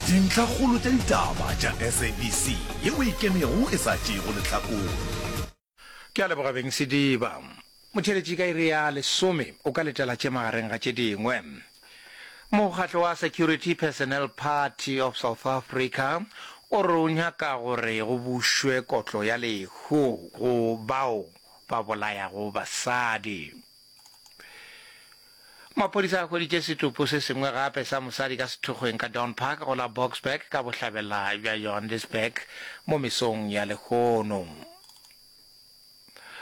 Dintlhakgolo tša ditaba tša SABC yeo e kemego e sa tšeego lehlakore. Ke a leboga Beng Sediba. Motheeletši ka iri ya lesome o ka letela tše magareng ga tše dingwe. Mokgatlo wa Security Personnel Party of South Africa o re o nyaka gore go bušwe kotlo ya lehu go bao ba bolayago basadi. Maphodisa a hweditše setopo se sengwe gape sa mosadi ka sethokgweng ka Dawn Park go la Boksburg ka bohlabela bja Johannesburg mo mesong ya lehono.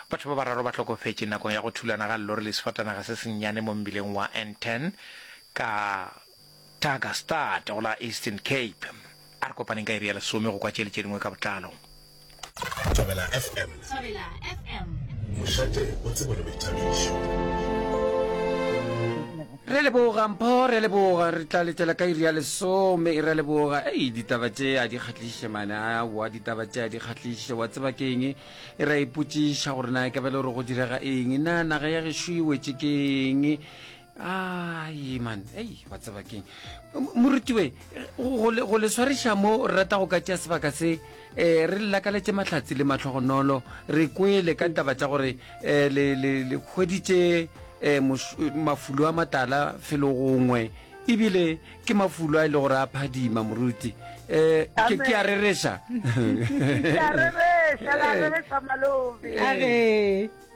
Batho ba bararo ba hlokofetše nakong ya go thulana ga llori le sefatanaga se sennyane mo mbileng wa N10 ka Taga Stad go la Eastern Cape. A re kopaneng ka iri ya lesome go kwa tše le tše dingwe ka botlalo. Thobela FM. Thobela FM. Mošate o tsebo le boithabišo. Re leboga mpho re leboga re tla letela ka iri ya lesome re leboga ei ditaba tše a di kgahliše mana wa ditaba tše a di kgahliše wa tseba ke eng e ra ipotšiša gore na ke bele gore go direga eng na naga ya gešo e wetše ke eng ai man ei wa tseba keng morutiwe go le swariša mo re rata go ka tšea sebaka se um re lelakaletse matlhatsi le matlhogonolo re kwele ka taba tša gore um le kgweditše um mafulo a matala felo gongwe ebile ke mafulo a e le gore a phadima moruti um ke a rereša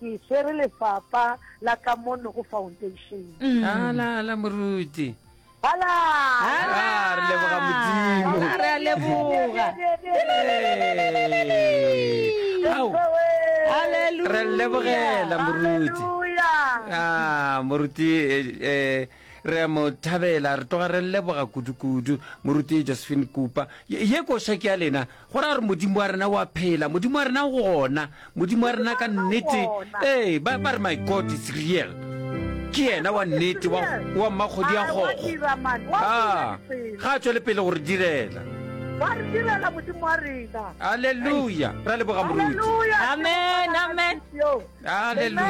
ke swere lefapa la ka mono go foundation mm. ala ala moruti ala ala ah, re leboga modimo re a leboga re lebogela moruti a ah, moruti eh, eh Re a mo thabela, re tloga re lleboga kudukudu, Moruti Josephine Kupa. Ye, ye koša ke ya lena. Go ra gore Modimo wa rena o a phela, Modimo wa rena o gona, Modimo wa rena ka nnete. Ee, ba, ba re, My God is real. Ke Yena wa nnete, wa, wa mmakgodi a kgogo. A, ga a tšwele pele go re direla. Wa re direla, Modimo wa rena. Aleluya! Re a leboga, Moruti. Aleluya! Amen, amen. Aleluya!